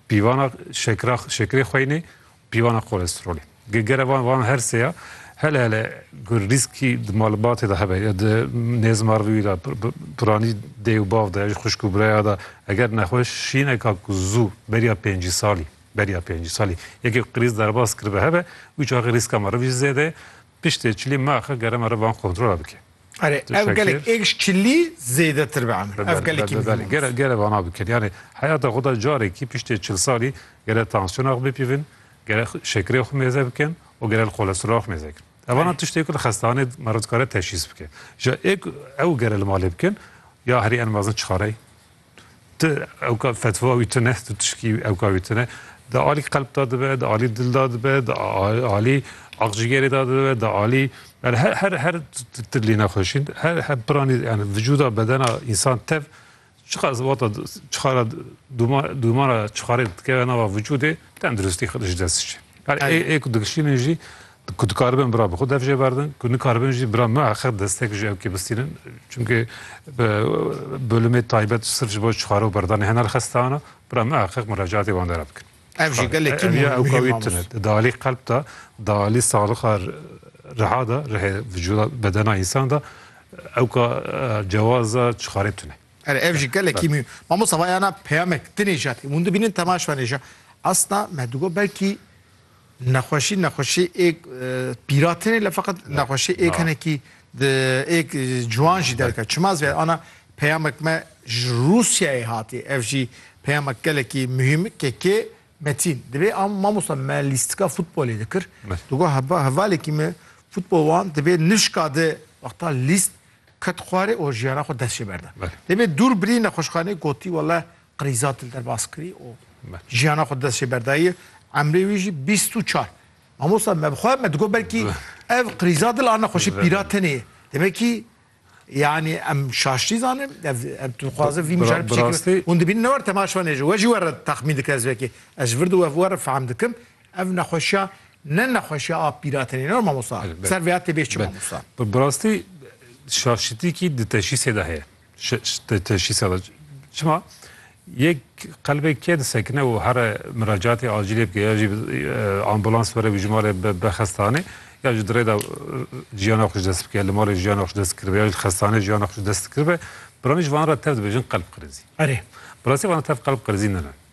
Pîvana şekra şekrê xweynê û pîvana kolesterolê. Ge gere van van her sê ya hele hele gur rîskî di malbatê de hebe ya di nêzmarvî de piranî dê û bav de ji xuşk û biraya de eger nexweşîneka ku zû beriya pêncî salî beriya pêncî salî yekê qirîz derbas kiribe hebe wî çaxê rîska meriv jî zêde ye. Piştê çilî me axe gerema re van kontrola bike. Erê ev gelek êrîş çilî zêdetir be emir. Ev gelekî bi belê. Gere gere vana bikin. Yanê heyata xwe de carekî piştê çil salî gere tansiyona xwe bipîvin, gere şekerê xwe mêze bikin û gere li kolesterola xwe mêze bikin. Evana tiştê ku li xestanê me re dikare teşhîs bike. Ja ê ku ew gere li malê bikin ya herî en mezin çixareyê. Tu ewka fetva wî tune, tu tişkî ewka wî tune. Di alî qelb da dibe, di alî dil da dibe, di alî axjigerê da dibe, di alî yani her her her tilî nexweşîn, her her piranî yani vücuda bedena insan tev çiqa zivata çiqara duma dumara çiqarê dikeve nava vücudê tenduristî xidij dest çi. Yani ê ê ku dikişînin jî Ku dikaribin bira bi xwe dev jê berdin, ku nikaribin jî bira me heq destek ji ew kê bistînin. Çimkî bi bölümê taybet sirf ji bo çixare û berdanê hener xestan e, bira me heq murecatê wan de re bikin. Ev jî gelekî mûhim e. Ew ka wî tune. Di alî qelb de, di alî saxixa riha de, rihê vücuda bedena însan de ew ka cewaza çixarê tune. Erê ev jî gelekî mûhim. Mamosta vayana peyamek di nêjatî hûn dibînin temaş venêja. Asna me digot belkî Nexweşî nexweşî êk pîratinê le feqet nexweşî êk henekî êk ciwan jî derke. Çima ez vê ana peyamek me ji Rûsyayê hatî. Ev jî peyamek gelekî muhîm ke kê Metîn divê am mamosta me lîstika futbolê dikir. Tu got heba hevalekî me futbol wan divê nişka de wexta lîst ket xwarê û jiyana xwe dest jê berde. Divê dûr birî nexweşxanê gotî wele Qrîzat li derbas kirî û jiyana xwe dest jê berdayî. Emrê wî jî bîst û çar. Mamosta me bi xwe me digot belkî ev qrîzat dil a nexweşî pîra tenê ye. Demê kî yanî em şaştî zanin em tu dixwaze vî mijar biçî hûn dibînin ne wer temaşvan êje we jî we re texmîn dike ez vekê ez ji vir di we we re fehm dikim ev nexweşiya ne nexweşiya a pîra tenê ne mamosta ser vêya tê bêş çi mamosta. Bi rastî şaşitî kî di teşîsê de heye. Teşhîs e çima yek qelbê kê disekine û here miracatê acîlê bike ya jî ambulans were wî ji malê be xestanê ya ji dirê de jiyana xwe ji dest bike li malê jiyana xwe ji dest kiribe ya ji xestanê jiyana xwe ji dest kiribe biraniş van re tev dibêjin qelb qirêzî. Erê, bi rastî van tev qelb qirêzî ne ne.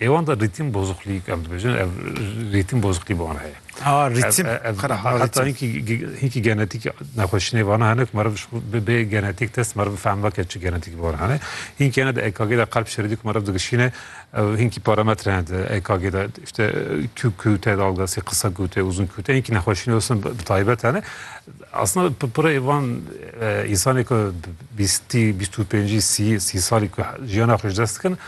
Hêwan de rîtim bozuklîk em dibêjin ev rîtim bozuklî bi wan heye. Ha rîtim xerab e. Heta hinkî hinkî genetîk nexweşînê vana hene ku meriv bi bê genetîk test meriv bifem veke çi genetîk bi wan hene. Hinkî hene de EKG de qelb şeridî ku meriv digişîne ev hinkî parametre hene di EKG de işte tu ku te dalgasî qisa ku te uzun ku te hinkî nexweşînê westin bi taybet hene. Aslında pira êvan însanê ku bîstî bîst û pêncî sî sî salî ku jiyana xwe ji dest dikin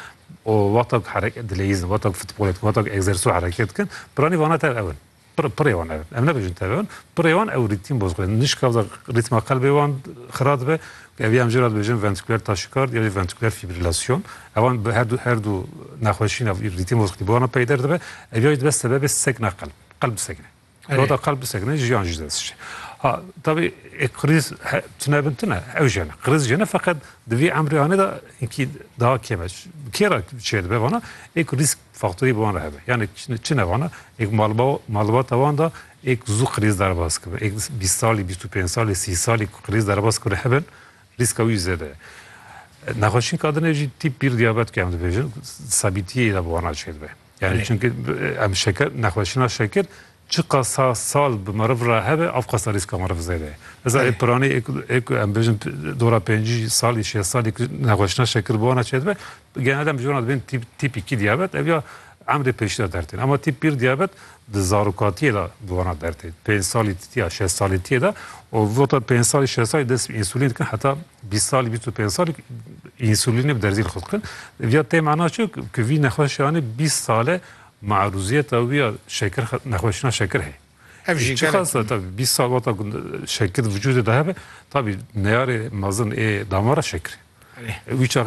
û wexta ku herek dileyîzin, wexta ku futbolê dikin, wexta ku egzersîzû herekê dikin, piranî vana tev ew in. Pir, pirê wan ew in. Em nebêjin tev ew in. Pirê wan ew rîtîm bozû xwe. Nişka wexta rîtma qelbê wan xira dibe, ev ya em jê re dibêjin ventrîkulêr taşîkard ya jî ventrîkulêr fîbrîlasyon. Ewan bi herdu her du nexweşîna rîtîm bozûxî bi wana peyder dibe. Ev ya jî dibe sebebê sekna qelb. Qelb disekine. Rota kalp bisekine jiyan ji dest şe. Ha tabi e kriz tune bin tune ew jene. Kriz jene fakat divî emrê anê da inkî daha keme. Kê ra çê dibe vana ek risk faktorî bi wan re hebe. Yani çi ne vana ek malba malbata wan da ek zû kriz derbas kibe. Ek bîst salî, bîst û pênc salî, sî salî ku kriz derbas kire hebin riska wî zêde ye. Nexweşîn kadine jî tîp bir diyabet ke em dibêjin sabîtiyê de bi wana çê dibe. Yani çünkü em şeker, nexweşina şeker çiqa sa sal bi meriv re hebe ev qasa rîska meriv zêde ye. Eza ê piranî ê ku em bêjin dora pêncî salî şêst salî ku nexweşina şeker bona çêdibe genelde dem jona dibên tîp tîp îkî diyabet ev ya emrê pêşî de dertên ama tîp bir diyabet di zarokatiyê de bi wana dertê pênc salî titiya şêst salî tiyê de û vota pênc salî şêst salî dest însulîn dikin heta 20 sal 25 sal insûlînê bi derzî li xwe dikin. Vîya tê mana çi ku vî nexweşiyanê 20 sale marûziyeta wî ya şekir nexweşina şekir heye. Ev jî çi xasa tabi 20 sal wata ku şekir vücudê de hebe tabi neyarê mezin ê damara şekirê. Wî çaxê